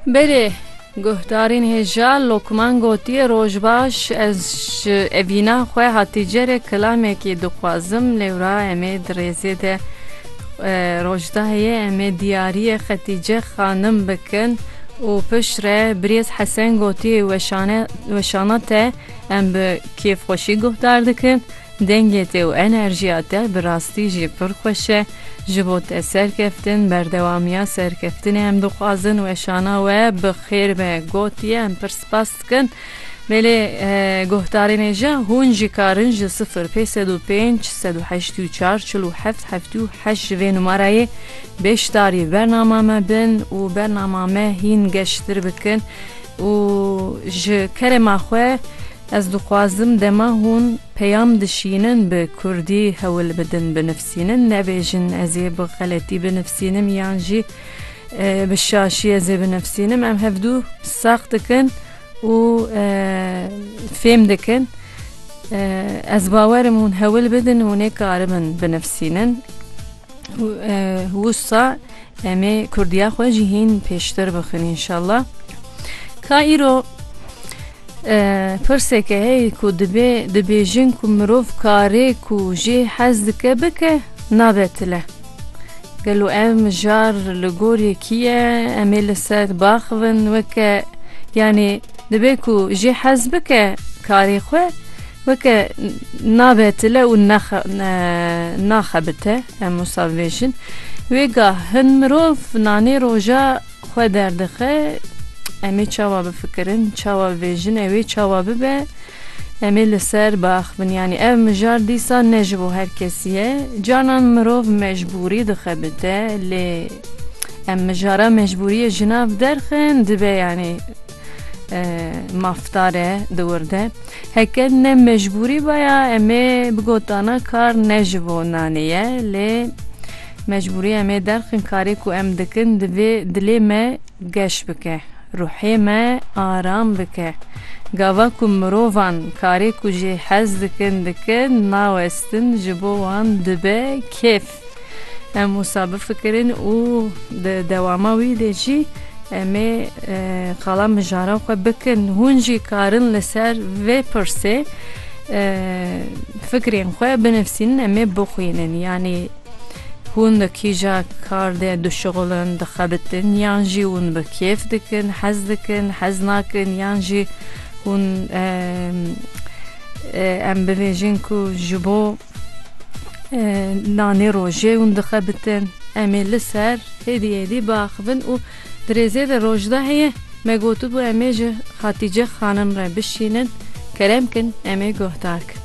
Belê, guhdarîn hêja Lokman gotiye roj baş ez ji evîna xwe hatîce re kilamekî dixwazim lêwra em ê di rêzê de rojdayê em ê diyariyê xetîce xanim bikin û pişt re birêz hesen gotiye weşane weşana te em bi kêfxweşî guhdar dikin. Dengê te û enerjiya te bi rastî jî pir xweş e. Ji bo te serkeftin, berdewamiya serkeftinê em dixwazin. Weşana we bi xêr be gotiye, em pir spas dikin. Belê guhdarên ê jî hûn jî karin ji sifir pê sed û pênc sed û heşt û çar çil û heft heftê û heşt ji vê numarayê beşdarî bernama me bin û bernama me hîn geştir bikin û ji kerema xwe Ez dixwazim dema hûn peyam dişînin bi kurdî hewl bidin binivsînin, nebêjin ez ê bi xeletî binivsînim yan jî bi şaşî ez ê binivsînim. Em hevdu sax dikin û fêm dikin. Ez bawer im hûn hewl bidin hûn ê karibin binivsînin. Wisa Em ê kurdiya xwe jî hîn pêştir bixin înşallah. Ka îro pirseke heye ku dibê dibêjin ku mirov karê ku jê hez dike bike nabe tile. Gelo ev mijar li gor yekî ye em ê li ser baxivin weke yanê dibê ku jê hez bike karê xwe Weke nabetile û naxebite em wisa bibêjin, wê gah hin mirov nanê roja xwe derdixe, em ê çawa bifikirin, çawa bibêjin, ew ê çawa bibe, em ê li ser biaxivin. Yanî ev mijar dîsa ne ji bo her kesî ye. Canan mirov mecbûrî dixebite lê em mijara mecbûriyê ji nav derxin dibe yanî. Maftare di wir de heke ne mecbûrî baya em ê bigotana kar ne ji bo nanê ye lê mecbûrî em ê derxin karê ku em dikin divê dilê me geş bike ruhê me aram bike gava ku mirovan karê ku jê hez dikin dikin nawestin ji bo wan dibe kêf. Em wisa bifikirin û di dewama wî de jî em ê qala mijaran xwe bikin. Hûn jî karin li ser vê pirsê fikrên xwe binivîsînin em ê bixwînin. Yanî hûn di kîja kar de dişixulin, dixebitin yan jî hûn bi kêf dikin, hez dikin, hez nakin yan jî hûn em bibêjin ku ji bo Nanê rojê hûn dixebitin. Em ê li ser hêdî hêdî biaxivin û di rêzê de Rojdaheyê me gotibû em ê ji Xatîce xanim re bişînin, kerem kin em ê guhdar kin.